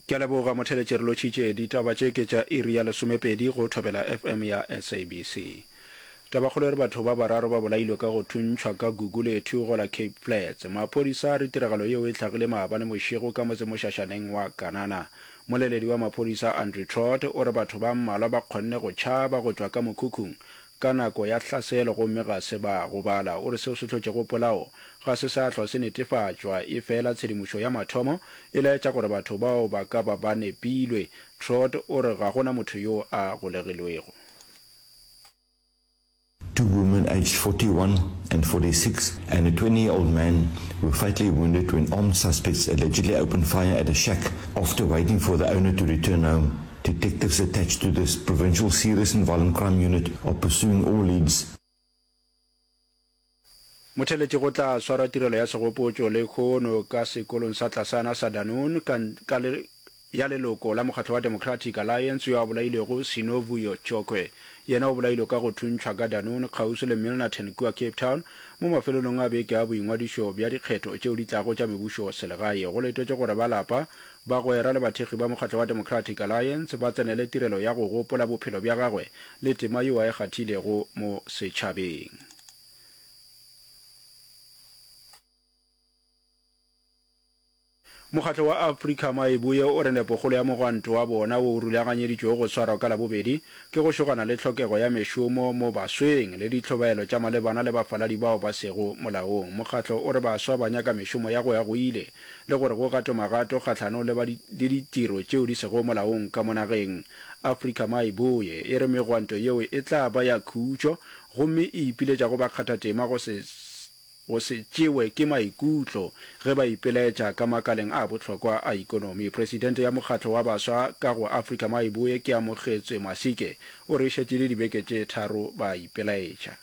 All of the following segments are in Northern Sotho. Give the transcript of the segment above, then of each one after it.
Ke a leboga motheletši re lotšhitše ditaba tše ke tša iri ya lesomepedi go Thobela FM ya SABC. Tabakgolo e re batho ba bararo ba bolailwe ka go thuntšhwa ka gugu le ethugo la Cape Flats. Maphodisa a re tiragalo yeo e tlhagile maabane mošego ka motsemošašaneng wa Kanana. Moleledi wa maphodisa Andrew Trott o re batho ba mmalwa ba kgonne go tšhaba go tšwa ka mokhukhung ka nako ya hlaselo gomme ga se ba gobala. O re seo se hlotšego polao ga se sa hlwa se netefatšwa, efela tshedimošo ya mathomo e laetša gore batho bao ba ka ba ba nepilwe. Trott o re ga go na motho yo a golegilwego. Two women aged forty one and forty six and a twenty year old man were fatally wounded when armed suspects allegedly opened fire at a shack after waiting for the owner to return home. Detectives attached to this Provincial Serious and Violent Crime Unit are pursuing all leads. Motheletši go tla swara tirelo ya segopotšo le kgono ka sekolong sa Tlasana sa Danoon ka, ka le, ya leloko la mokgatlo wa Democratic Alliance yo a bolailwego Sinovuyo Chokwe. Yena o bolailwe ka go thuntšhwa ka Danoon kgauswi le Milnerton kua Cape Town mo mafelelong a beke a boingwadišo bja dikgetho tšeo di tlago tša mebušoselegae. Go letetšwe gore ba lapa Bagwera le bathekgi ba mokgatlo wa Democratic Alliance ba tsenele tirelo ya go gopola bophelo bja gagwe le tema yo a e kgathilego mo setšhabeng. Mokgatlo wa Afrika Maibuye o re nepokgolo ya mogwanto wa bona wo o rulaganyeditšwego go swarwa ka Labobedi ke go šogana le tlhokego ya mešomo mo basweng le ditlhobaelo tša malebana le bafaladi bao ba sego molaong. Mokgatlo o re baswa ba nyaka mešomo ya go ya go ile. le gore go gatwe magato kgahlanong le ba le ditiro tšeo di sego molaong ka mo nageng. Afrika Mai Boye e re megwanto yeo e tla ba ya khutšo gomme e ipiletša go bakgathatema go se go se tšewe ke maikutlo ge ba ipelaetša ka makaleng a bohlokwa a ikonomi. Presidente ya mokgatlo wa baswa ka go Afrika Mai Boye Keamogetswe Masike o re e šetše e le dibeke tše tharo ba ipelaetša.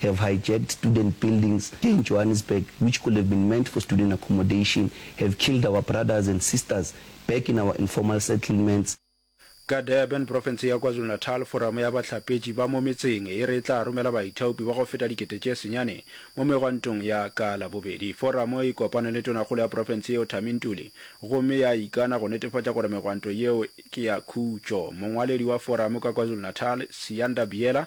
have hijacked student buildings in Johannesburg which could have been meant for student accommodation, have killed our brothers and sisters back in our informal settlements, Ka Durban, profense ya KwaZulu-Natal, Foramo ya Bahlapetši ba mo Metseng e re e tla romela baithaopi ba go feta dikete tše senyane mo megwantong ya ka Labobedi. Foramo e kopane le tonakgolo ya profense yeo Thami Ntuli gomme ya ikana go netefatša gore megwanto yeo ke ya khutšo. Mongwaledi wa Foramo ka KwaZulu-Natal, Siyanda Biyela,